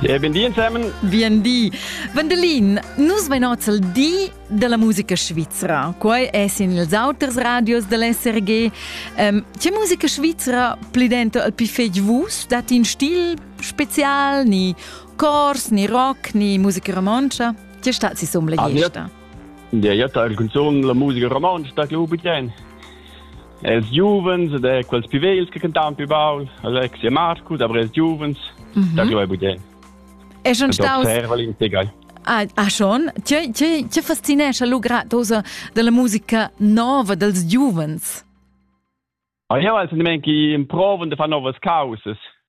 Ja, ben di ensemen. Bien di. Vandelin, nus vein oz il di della musica svizra. Quei è sin ils auters radios dell'SRG. Um, c'è musica svizra pli dentro al più fetg vus? Dat in stil special, ni cors, ni rock, ni musica romontsch? C'è stat si somma la gesta? Ja, io teil canzon la musica romontsch, da che ho beten. Els giuvens ed er quels più vegls che cantan più baul, Alex e Marco, da brels giuvens, mm -hmm. da giovai budè. E schon staus Ah, ah schon? Tge, tge, tge fascinesce lu gratosa della musica nova dels giuvens? Ah, io al sentiment che improvan de far novas causas.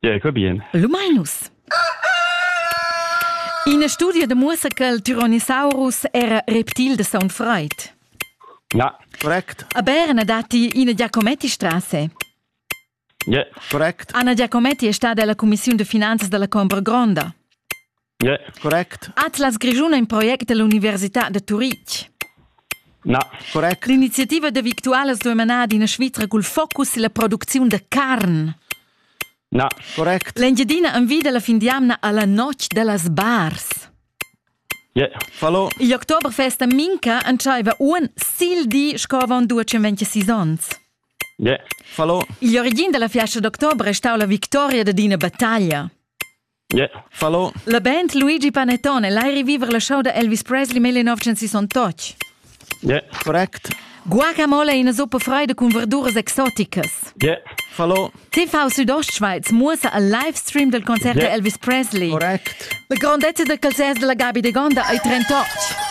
Jacob bien. Lumainus. Ina studia de muossa che il Tyrannosaurus era reptil de saun freit. Ja. Correct. A Berna datti ina Giacometti Strasse. Yeah. Correct. Anna Giacometti è stata della Commissione de Finanzas della Combra Gronda. Yeah. Correct. Atlas Grischun è in project dell'Università da Turitg. Na. Correct. L'iniziativa da Victualas duai manar ad ina Svizra cul focus sulla producziun da carn. Na. Correct. L'Engiadina envida la fin d'jamna alla notg dellas bars. Yeah. Fallo. Il Oktoberfest a Minca entschaiva uon sil di sco avon due 26 onns. Yeah. Fallo. Il origin della fiastra d'october è stau la victoria dad ina battaglia. Yeah. Fallo. La band Luigi Panettone l'hai revivere la show da Elvis Presley 1968. Yeah. Correct. Guacamole in zuppa freida cun verduras exoticas. Yeah. Fallo. TV Südostschweiz muossa al live stream del concert yeah. da Elvis Presley. Correct. La grandezza del calzers della Gabi de Gonda ai 38.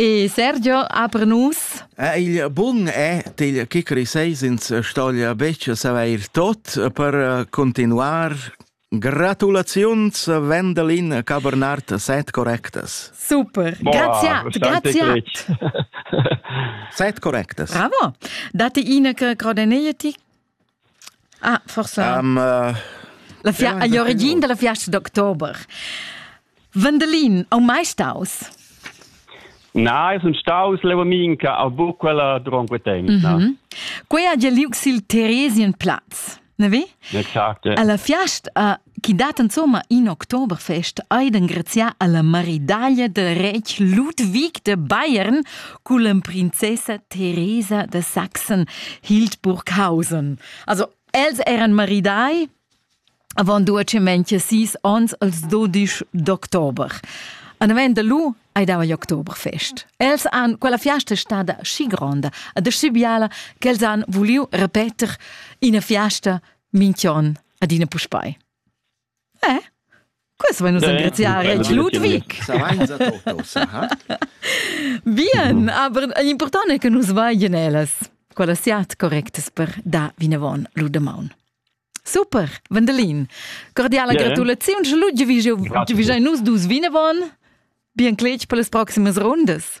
E Sergio, apre nus. Eh, il bun è til chicri seis ins stoglia becce savair tot per eh, continuar. Gratulaziuns, Wendelin Cabernart, set correctas. Super. Boah, grazie, grazie. set correctas. Bravo. Date ina che crodeneieti Ah, forsa. Um, uh, la fia agli origin della fiasta d'october. Vendelin, au mai staus? Na, es un staus leva minca a bu quella dronque temp. Mm -hmm. Quei ha già liug sil Theresien Platz, ne vi? Exacte. Alla fiast a chi dat insomma in Oktoberfest ait engrazià alla maridaglia del retg Ludwig de Bayern culla princessa Teresa de Sachsen Hildburghausen. Also els eran maridai avant duacemente sis ons als 12 d'october. An avent de lu ai dava gli Oktoberfest. Els han quella fiasta stada schi gronda, adessi biala, che els han vuliu repeter ina fiasta Minchion adina puspei. Eh? Questo vuoi nus engraziare il Ludwig. Bien, aber l'important è che nus vagien ellas. Quella siat correctas per da vinavon Ludemaun. Super, Vandelin. Cordiala yeah. gratulaziun, che Ludwig, Ludwig nus dus vinavon. Bien cletg per las proximas rundas.